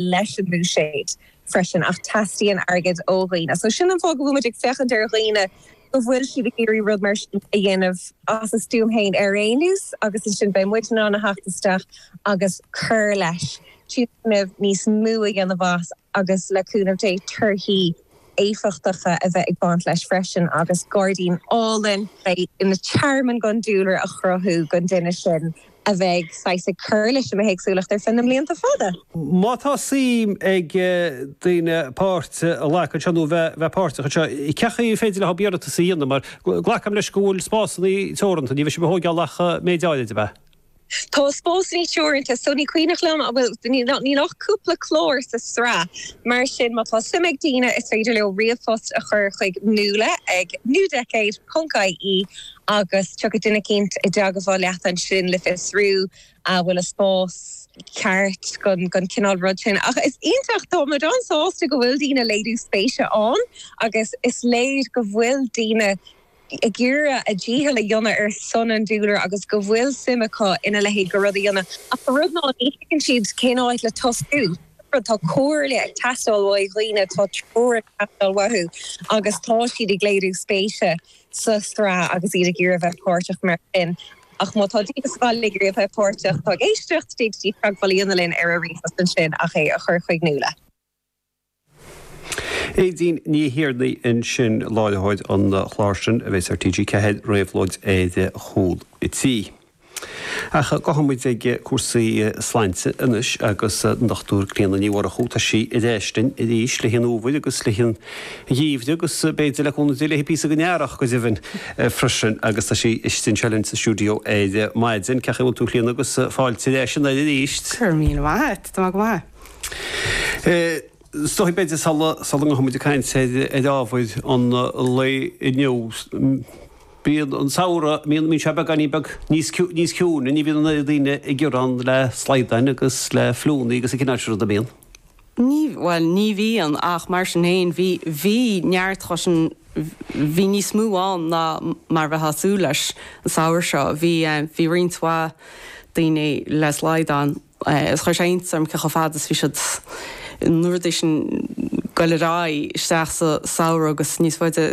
leis an mbuiséad freisin ach teastaíonn airgead ó dhaoine. So sin an fáth go bhfuil muid ag féachaint ar dhaoine go bhfuil siad ag iarraidh rud mar sin a dhéanamh as a stuaim féin ar aon nós agus ansin beidh muid in ann a theacht isteach agus cur leis, tionscnamh níos mó a dhéanamh as agus le cúnamh Dé torthaí éifeachtacha a bheith ag baint leis freisin agus gairdín álainn a bheadh ina tearmann don dúlra a chruthú don duine sin a bheidh saghas ag cur leis an mbithéagsúlacht ar feadh na mblianta fada. Má tá suim ag daoine páirt a ghlacadh anseo nó bheith páirteach anseo, cén chaoi féidir leob iarratas a dhéanamh mar glacaim leis go bhfuil spásanna teoranta, ní bheidh sibh ag tóigeáil ach méid áirid, ab ea? Tá spásanna teoranta so ní cuimhneach liom, bhuel níl ach cúpla clár sa sraith mar sin má tá suim ag daoine is féidir leo ríomhphost a chur chuig Nuala ag newdecade.ie agus tiocfaidh duine éicint i dteagmháil leat ansin le fiosrú an bhfuil an spás ceart don chineál rud sin. Ach is iontach, tá muid an-sásta go bhfuil daoine ag léiriú spéise ann agus is léir go bhfuil daoine ag iarraidh a dícheall a dhéanamh ar son an dúlra agus go bhfuil suim acu ina leithéid de rud a dhéanamh. Ach an rud ná ní thuigeann siad cén áit le tosú. Tá comhairle ag teastáil ó dhaoine, tá treoir ag teastáil uathu agus tá siad ag léiriú spéise. sa tsraith agus iad ag iarraidh a bheith páirteach mar sin, ach má tá daoine sa bhaile ag iarraidh a bheith páirteach, tá ag éisteacht, dtig libh teagmháil a dhéanamh linn ar an ríomhphost ansin ach é a chur chuig Nuala. Aedín Ní Thiarnaigh ansin, láithreoir an chláir sin a bheas ar TG4, Réabhlóid ar Chúl an Tí. Ach gabhfaidh muid ag cúrsaí sláinte anois agus an Dr. Clíona Ní Mhurchú, tá sí ar ais linn arís le haghaidh an fhómhair agus le haghaidh an gheimhridh agus b'fhéidir le cúnamh Dé le píosa den earrach go deimhin freisin agus tá sí istigh anseo linn sa stiúideo ar maidin. Cén chaoi bhfuil tú a Chlíona agus fáilte ar ais ar an aer arís. Go raibh míle maith a't, tá mé go maith. Is dóigh b'fhéidir sula ngabhfaidh muid ag caint ar ábhar an lae inniu, Bíonn an samhradh, bíonn sé beagáinín beag níos ciúine, ní bhíonn na daoine ag gearán le slaghdáin agus le fliúnna agus an cineál sin ruda, bíonn? Ní, bhuel, ní bhíonn ach mar sin féin bhí, bhí neart acu sin, bhí níos mó ann ná mar a bheifeá ag súil leis an samhradh seo, bhí, bhí roinnt mhaith daoine le slaghdán. agus chuir sé iontas orm cé chomh fada is a bhí siad, na víris, ag goil ar aghaidh isteach sa samhradh agus níos faide.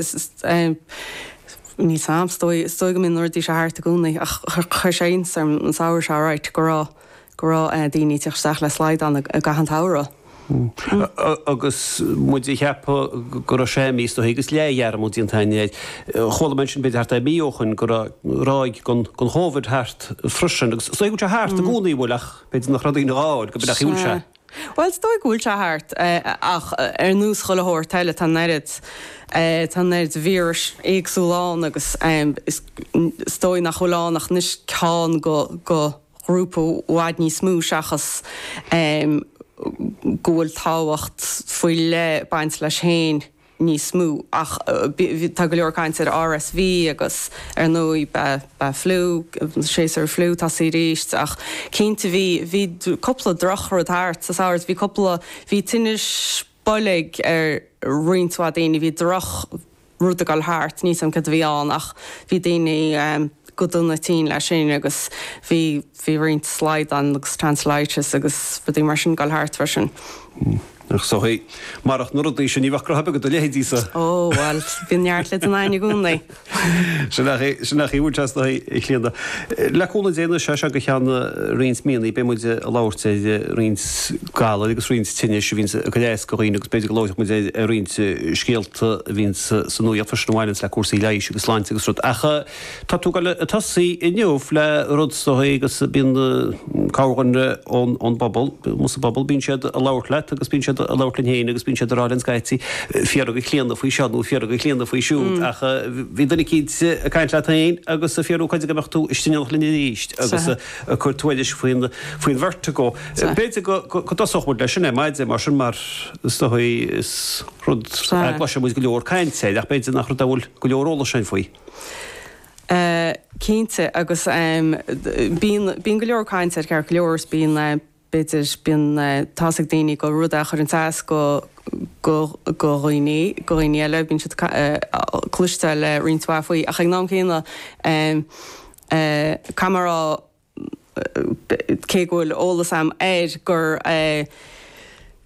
Níl 's a'm, is dóigh, is dóigh go mbíonn na víris thart i gcónaí ach chuir sé iontas orm an samhradh seo, alright, go raibh, go raibh daoine ag tíocht isteach le slaghdán i gcaitheamh an tsamhraidh. Agus muid ag ceapadh go raibh sé místuithe agus leathdhearmad déanta againn air, chuala mé ansin, b'fhéidir thart ar mhí ó shoin, go raibh ráig den Chóibhid thart freisin. Agus is dóigh go bhfuil sé thart i gcónaí, an bhfuil? Ach b'fhéidir nach raibh daoine á fháil, go baileach, an bhfuil sé. Bhuel, is dóigh go bhfuil sé thart. Ach ar nós chuile shórt eile, tá an oiread, tá an oiread víris éagsúla ann agus is dóigh nach bhfuil ann ach anois ceann go, go, ghrúpa i bhfad níos mó seachas go bhfuil tábhacht faoi leith ag baint leis féin níos mó ach tá go leor caint ar RSV agus ar ndóigh beidh fliú, séasúr fliú ag tosaí arís ach cinnte bhí cúpla drochrud thart sa samhradh, bhí cúpla, bhí tinneas, boilg ar roinnt mhaith daoine. Bhí drochrud ag dul thart, níl a fhios agam céard a bhí ann ach bhí daoine go dona tinn leis sin agus bhí bhí roinnt slaghdán agus tonsilitis agus rudaí mar sin ag dul thart freisin. So he. Marach na rudaí sin ní bheadh graithe ar bith ag do leithéidí-sa. Ó bhuel bhí neart le déanamh againn i gcónaí. Sin nach iomaí trasnaithe a Chlíona. Le cúnamh Dé, anois as seo go ceann roinnt míonna beidh muid ag labhairt ar roinnt galair agus roinnt tinnis a bhíonn ag cur as do dhaoine agus b'fhéidir go labhróidh muid ar roinnt scéalta a bhíonn sa nuacht freisin a bhaineanns le cúrsaí leighis agus sláinte agus rud. Ach tá tú ag tosaí inniu le rud is dóigh agus bíonn cabhair ón bpobal, ón bpobal bíonn siad ag labhairt leat agus bíonn siad ag labhairt linn féin agus bíonn siad ag rá linn scaití, fiafraigh de Chlíona faoi seo nó fiafraigh de Chlíona faoi siúd ach bhí duine eicínt ag caint leat féin agus ag fiafraí cáide go mbeadh tú istigh linn arís agus ag cur tuairisc faoin vertigo. B'fhéidir go dtosódh muid leis sin ar maidin mar sin mar is dóigh is rud é a gcloiseann muid go leor cainte air ach b'fhéidir nach rud a bhfuil go leor eolais againn faoi. Cinnte agus bíonn go leor caint air ceart go leor is bíonn, b'fhéidir, bíonn tá's ag daoine gur rud é a chuireanns as go go dhaoine go dhaoine eile bíonn siad ag cloisteáil roinnt mhaith faoi ach ag an am céanna caithfidh mé a rá cé go bhfuil eolas agam air gur.